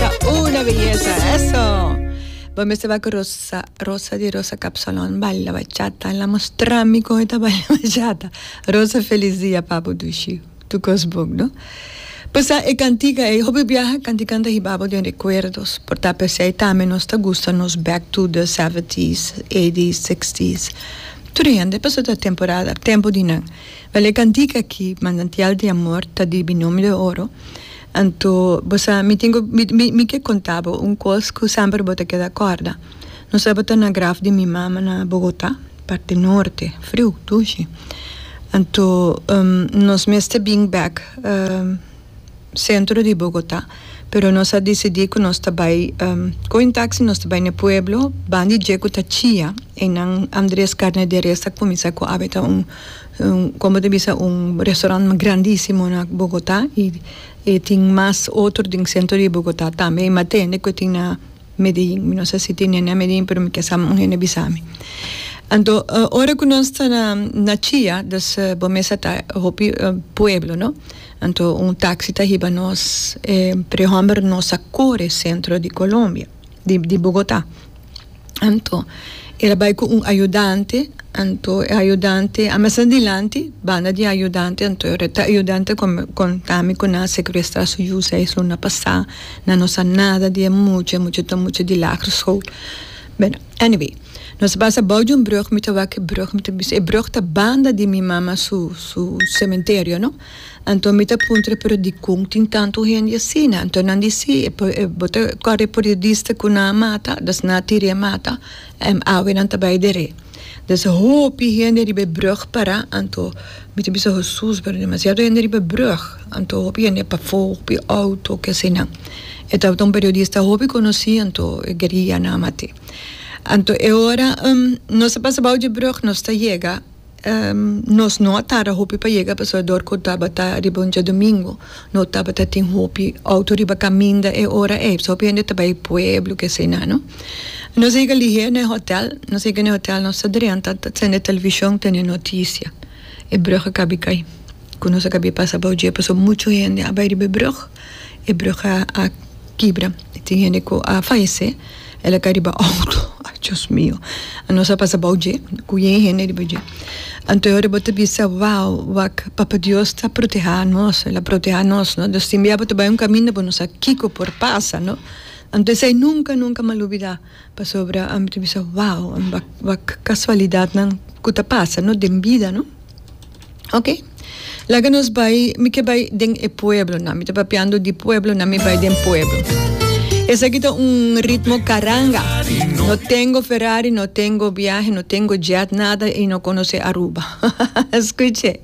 ta una belleza. Eso. Bo mester va con Rosa, Rosa di Rosa Capsalon, baila bachata. La mostrami con esta baila bachata. Rosa, feliz dia, papo dushi. Tu cos book, no? Pues e cantica, e hobby viaja, canticanta hi babo den recuerdos. Por ta pesei tame nos ta gusta nos back to the 70s, 80s, 60s. Tur e hende paso ta temporada, tempo di nan. Wel e cantica aki, Manantial di Amor, ta di Binomio de Oro. Anto bo sa, mi tin ku, mi, mi, mi ke konta bo un kos ku semper bo ta keda kòrda. Nos tabata na graf di mi mama na Bogotá, parti norte, friu, dushi. Anto, um, nos mester bin bèk, um, sentro di Bogotá, pero nos a disidí ku nos ta bai, um, kohe un taksi, nos ta bai na e pueblo, ban di dje ku ta chía, einan Andrés Carne de Res a kuminsá ku habita un. Como te bisa un restaurant grandisimo na Bogota y e tin mas otro den centro di Bogota tambe y matende cu e tin na Medellin mi no sa si tin hende na Medellin pero mi ke sa un hende bisami anto ora cu nos ta na Chía dus bo mester ta hopi pueblo no anto un taxi ta hiba nos e prehomber nos a core centro di Colombia. di di Bogotá. Anto el a bai ku un ayudante, anto e ayudante a mester dilanti, banda di ayudante, anto e ayudante kòm konta mi ku nan a sekurestrá su yu seis luna pasá, nan no sa nada di e mucha, e mucha ta mucha di Lager School. Beno, anyway, nos a pasa bou di un brùg, mi ta wak e brùg, mi ta bisa e brùg ta banda di mi mama su su sementerio, no. Anto mi ta puntra pero dikon tin tantu hende asina? Anto nan di si e bo ta kore periodista ku nan a mata dus nan a tira e mata en awe nan ta bai dere dus hopi hende riba e brug para anto mi ta bisa hosus pero demasiado hende riba e brug anto hopi hende pafo hopi outo ke sinan e tabata un periodista hopi konosi anto e gueria nan a mat'e anto e ora nos ta pasa bou di e brug nos ta yega. Nos no a tarda hopi pa yega pasobra dor ku tabata riba un diadumingu no tabata tin hopi outo riba kaminda e ora ei pasobra hopi hende ta bai pueblo ke asina no. Nos a yega lihé na e hotel, nos a yega na e hotel nos ta drenta ta sende e televishon tene notisia e brug a kabi kai ku nos a kabi pasa abou dje pasobra muchu hende a bai riba e brug, e brug a kibra tin hende ku a fayesé. El a ka riba auto. Ay Dios mio. Anos a pasa bou dje, ku yen hende riba dje. Anto e ora bo ta bisa, wow, wak, Papa Dios ta proteha nos, el a proteha nos, no? Nos tin bia bo ta bai un kaminda bo no sa kiko por pasa, no? Anto esei nunka, nunka m'a lubidá. Pasobra ami ta bisa, wow, wak, wak kasualidatnan ku ta pasa, no? Den bida, no? Ok, laga nos bai, mi ke bai den e pueblonan, mi ta papiando di pueblonan, mi bai den pueblo. Esaki ta un ritmo caranga. No tengo Ferrari, no tengo viaje, no tengo jet, nada y no conoce Aruba. Escuche.